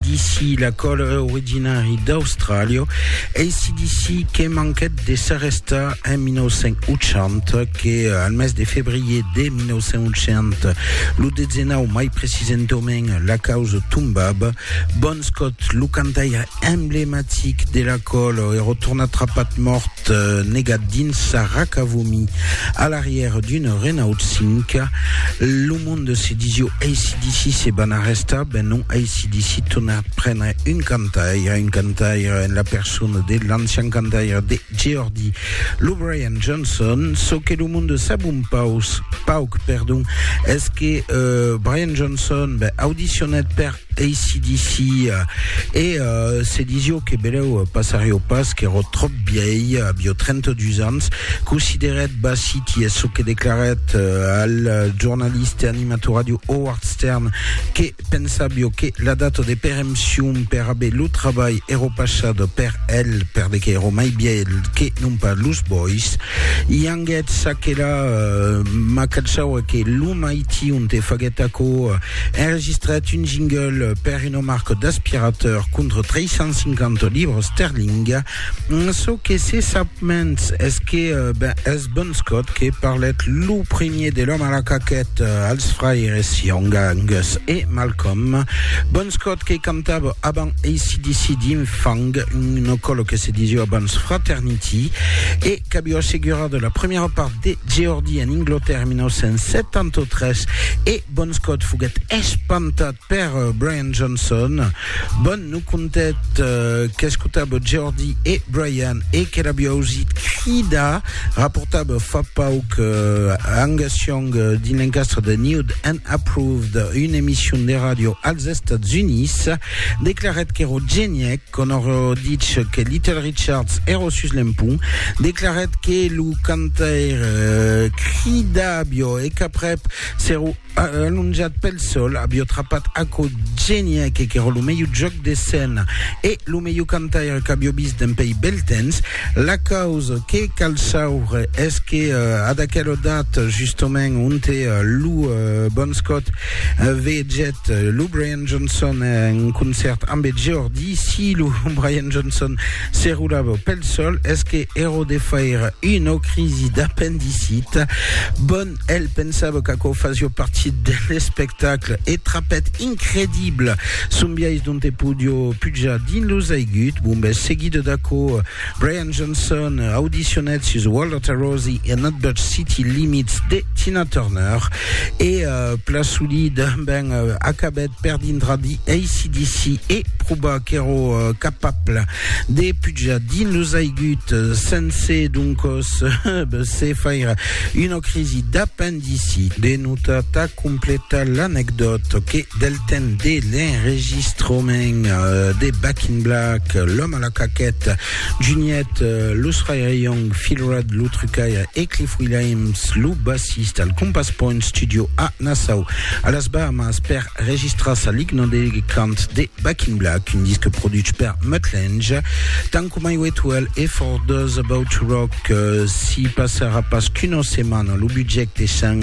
D'ici la còl originari d'Austràlia, ACDC que manquèt de s'arrestar en 1980, que al mes de febrier de 1980, lo dezenau mai precisentament la causa tombab, Bon Scott, lo cantaire emblematic de la còl, èra tornat trapat mòrt negat dins sa racavomi a l'arrièr d'una Renault 5. Lo monde se disió ACDC se van arrestar. Ben non aissi decidit tornar prendre un cantaire, un cantaire en la persona de l'ancian cantaire de Geordie, lo Brian Johnson. Çò que lo monde sap un paus, pauc, perdon, es que euh, Brian Johnson ben, audicionèt per ACDC e euh, se disió que beleu passarió pas, qu'èro tròp bièi, avió 32 ans, considerèt Bassiti, es çò que declarèt euh, al jornalista e animator ràdio Howard Stern, que pensàvio que la data de perempcion per aver lo trabalh èro passada per el, per de qu'èro mai vièlh que non pas los bois. I anguèt ça que la ma cachaua que lo maition te faguèt aquò, enregistrèt un jingle per una marca d'aspirateur contra 350 libras sterling. Çò que se sap mens es que ben es Bon Scott que parlèt lo primier de l'òme a la caquèta als fraires Young, Angus e Malcolm. Bon Scott que cantava avant ACDC dins Fang, una còla que se disiá abans Fraternity e qu'aviá assegurada la primièra part de Geordie en Inglatèrra en 1973 e Bon Scott foguèt espantat Per Brian Johnson, bon, non contet qu'escotava Jordi e Brian e que l'avi ausit cridar, raportava fa pauc Angus Young dins l'encastre de Nude and Approved, una emission de ràdio als Estats Units, declarèt qu'èro genièc, quand òrò dich que Little Richards èro sus l'empont, declarèt que lo cantaire cridàvio e qu'aprèp s'èro Alonjat pel sol, avió trapat aquò genièc qu'èra lo melhor jòc d'escèna e lo melhor cantaire qu'avió vist dempèi bèl temps. La causa que cal saure es que ad aquela data justament onte lo Bon Scott vegèt lo Brian Johnson en concèrt amb eth Geordi, si lo Brian Johnson se rolava pel sol es que èra de faire una crisi d'apendicita. Bon El pensava qu'aquò fasió partit de l'espectacle e trapèt incredible son biais dont e podió pujar dins los aigut bombes. Seguido d'aquò, Brian Johnson audicionèt sus World of Rosie e Not But City Limits de Tina Turner e uh, Plasuli tanben uh, acabèt per dintrar di ACDC e provar qu'èro uh, capable de pujar dins los aigut sense donc se faire une crise d'appendicite de notata complète l'anecdote que del temps de l'enregistrement euh, de Back in Black, l'homme à la caquette, Juniette, euh, Lou Young, Phil Rudd, Lou Trucaille et Cliff Williams, Lou bassiste al Compass Point Studio à Nassau, à las Bahamas, per Registras a ligna de cant de Back in Black, un disc produch per Mutt Lange, tant coma i Wetwell e For Those About to Rock. S'i passarà pas qu'una setmana, lo budget essent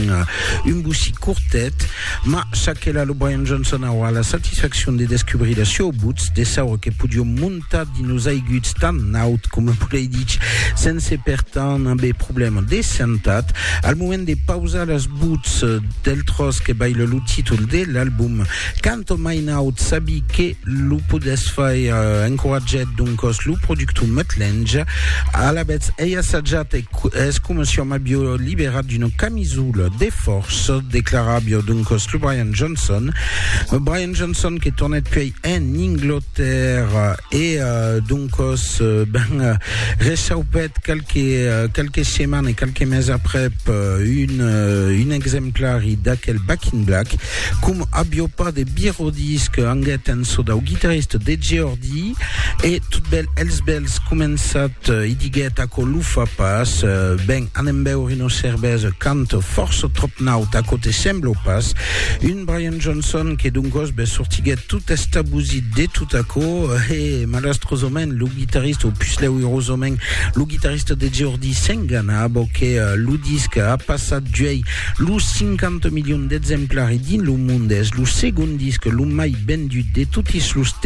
un bocí cortet, mas çaquelà lo Brian Johnson aurà la satisfaccion de descubrir la sieu butz, de saure que podiom montar Tad i nos aiguts tan naut coma volei dich, sense per tant aver problèma de santat. Al moment de pausar las buts del tròç que baila lo títol de l'album, canto mai naut sabi que lo podètz faire encoratjat doncòs lo productor Mutt Lange. Alavetz ei assajat e es coma si òm avió liberat d'una camisola de fòrça, declaravió doncòs lo Brian Johnson. Brian Johnson que tornèt puèi en Inglotèrra e doncòs ben rechaupèt qualques setmanes e qualques meses aprèp un exemplari d'aquel Back in Black, com avió pas de birròdís que anguèt en çò dau guitarrista de Geordi e totbèl els bèls començat e diguèt aquò lo fa pas, ben anem beure una cervesa canta fòrça tròp naut, aquò te sembla o pas? Un Brian. Johnson, que doncòs be sortiguèt tot estabosit de tot aquò, e malastrosament lo guitarrista, o pus lèu irosament, lo guitarrista de Geordie s'engana abo que lo disc a passat d'uèi lo 50 milions d'exemplari dins lo monde, es lo segond disc lo mai vendut de totis los temps.